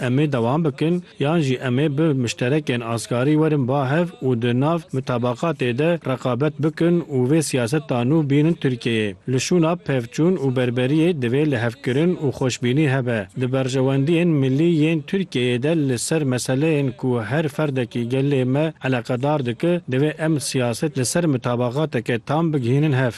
Em ê dewam bikin yan jî em ê bi muşterekên asgarî werin ba hev û di nav mitabaqatê de reqabet bikin û vê siyaseta nû bînin Tirkiyeyê. Li şûna pevçûn û berberiyê divê lihevkirin û xweşbînî hebe. Di berjewendiyên milî yên Tirkiyeyê de li ser meseleyên ku her ferdekî gelê me eleqedar dike, divê em siyaset li ser mitabaqateke tam bigihînin hev.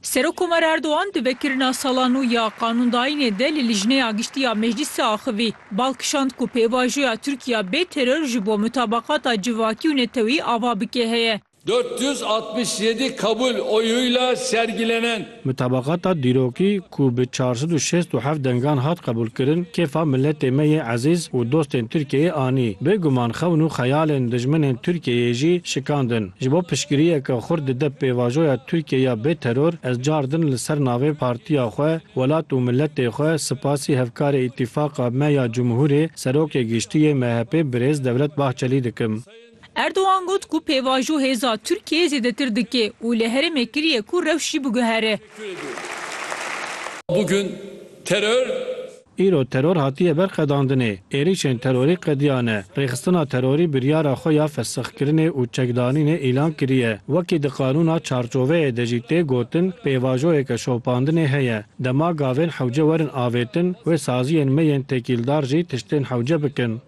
Serokkomer Erdogan di vekirina sala nû ya qanûndayînê de li Lijneya Giştî ya Meclîsê axivî. Bal kişand ku pêvajoya Tirkiya bê teror ji bo mutabaqata civakî û netewî ava bike heye. Dört yüz altmış yedi kabul oyuyla sergilenen. Mutabaqata dîrokî ku bi çar sed û şêst û heft dengan hat qebûlkirin, kêfa miletê me yê ezîz û dostên Tirkiyeyê anî. Bêguman xewn û xeyalên dijminên Tirkiyeyê jî şikandin. Ji bo piştgiriyeke xurt dide pêvajoya Tirkiye ya bê teror, ez car din li ser navê partiya xwe, welat û miletê xwe sipasî hevkarê Îtîfaqa me ya Cumhurê, Serokê Giştî yê MHP'ê birêz Devlet Bahçelî dikim. Erdogan got ku pêvajo hêza Tirkiyeyê zêdetir dike û li herêmê kiriye ku rewş jî biguhere. Îro teror hatiye ber qedandinê, êrîşên terorî qediya ne, rêxistina terorî biryara xwe ya fesixkirinê û çekdanînê îlan kiriye. Wekî di qanûna çarçoveyê de jî tê gotin, pêvajoyeke şopandinê heye. Dema gavên hewce werin avêtin, wê saziyên me yên têkîldar jî tiştên hewce bikin.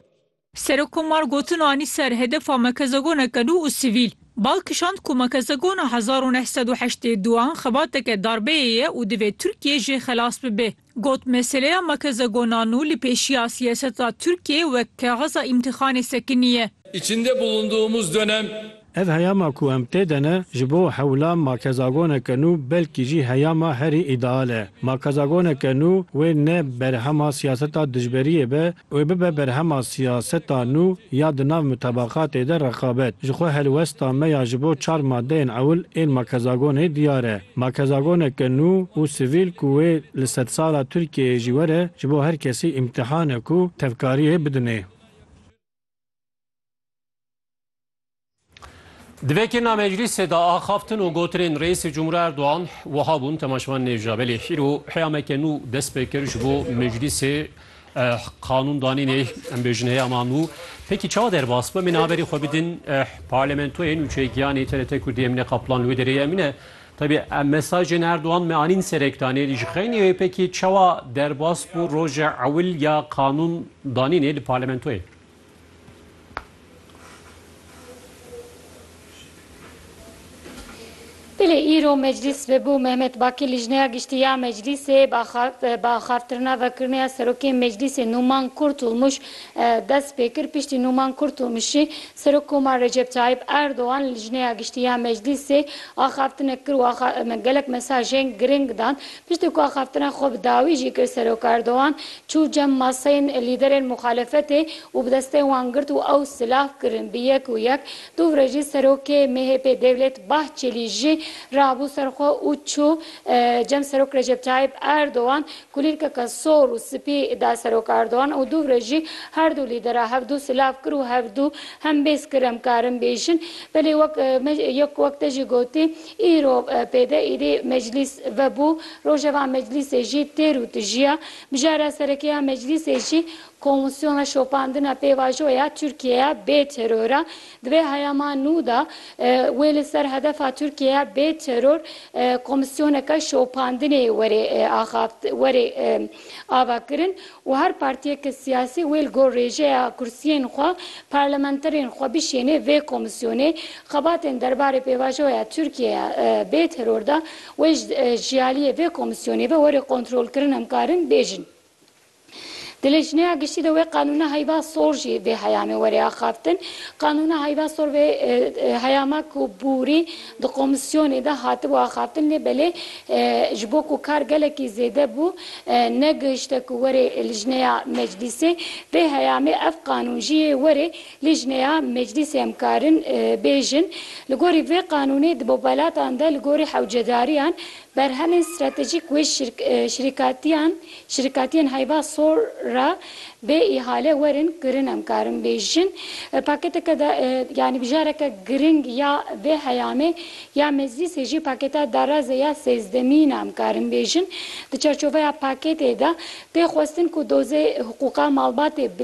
Serokkomar gotin anî ser hedefa mekezegoneke nû û sivîl. Bal kişand ku mekezegona hezar û neh sed û heştê du an xebateke darbeyê ye û divê Tirkiye jê xelas bibe. Got meseleya mekezegona nû li pêşiya siyaseta Tirkiyeyê wek kaxiza îmtîxanê sekinî ye. İçinde bulunduğumuz dönem Ev heyama ku em tê de ne, ji bo hewla makezagoneke nû belkî jî heyama herî îdeal e. Makezagoneke nû wê ne berhema siyaseta dijberiyê be, wê bibe berhema siyaseta nû ya di nav mutabaqatê de reqabet. Ji xwe helwesta me ya ji bo çar madeyên ewil ên makezagonê diyar e. Makezagoneke nû û sivîl ku wê li sedsala Tirkiyeyê jî were, ji bo her kesî îmtîhanek û tevkariyê bidinê. Di vê kêna meclîsê de axaftin û gotinên Reîsê Cumhurî Erdogan wiha bûn temaşevan nêja belê îro heyameke nû dest pê kir ji bo meclîsê qanûndanînê em bêjin heyama nû pekî çawa derbas bim min haberî xwe bidin parlamentoyê nûçeyê giyanê TRT Kurdî em neqaplan li wê derê em ne Tabi em mesajên Erdogan me anîn ser ekranê lî ji xeynî wê pekî çawa derbas bû roja ewil ya qanûn danînê li parlamentoyê. Belê îro meclîs bû. Mehmet Bakî Lijneya Giştî ya Meclîsê bi axaftirina vekirneya Serokê Meclîsê Nûman Kurtulmuş dest pê kir. Piştî Nûman Kurtulmuşî Serokkomar Recep Tayyîp Erdogan li Lijneya Giştî ya Meclîsê axaftinek kir û gelek mesajên giring dan. Piştî ku axaftina xwe bi dawî jî kir Serok Erdogan çû cem maseyên lîderên muxalefetê û bi destê wan girt û ew silav kirin bi yek û yek. Dûvre jî serokê MHP'ê Devlet Bahçelî jî rabû ser xwe û çû cem Serok Recep Tayyip Erdogan kulîlkeke sor û spî da Serok Erdogan û dûvre jî her du lîdera hevdu silav kir û hevdu hembêz kir em karin bêjin belê wek me yek wek te jî gotî Îro pêde êdî meclîs vebû. Rojeva meclîsê jî têr û tijiya. Mijara sereke ya meclîsê jî Komîsyona Şopandina Pêvajo ya Tirkîyeya Bê Teror a. Di vê heyama nû de wê li ser hedefa Tirkîyeya bê teror komîsyoneke şopandinê werê axaft werê ava kirin û her partiyeke siyasî wê li gor rêjeya kursiyên xwe parlamenterên xwe bişênê vê komîsyonê, xebatên derbarê pêvajoya Tirkiyê ya bê teror de wê ji aliyê vê komîsyonê ve were kontrol kirin em karin bêjin. Di lejneya giştî de wê qanûna heyva sor jî vê heyamê were axaftin. Qanûna heyva sor vê heyama ku bûrî Di komîsyonê de hatibû axaftin lê belê ji bo ku kar gelekî zêde bû negihişte ku were lijneya meclîsê. Vê heyamê ev qanûn jî yê were lijneya meclîsê em karin bêjin. Li gorî vê qanûnê di bo welatan de li gorî hewcedariyan Berhemên stratejîk wê şirîkatiyan, şirîkatiyên heyva sor re bê îhale werin kirin em karin bêjin. Pakêteke da yanî bijareke giring ya vê heyamê ya Meclîsê jî pakêta darazê ya sêzdemîn e em karin bêjin. Di çarçoveya pakêtê de tê xwestin ku dozê hiqûqa malbatê bi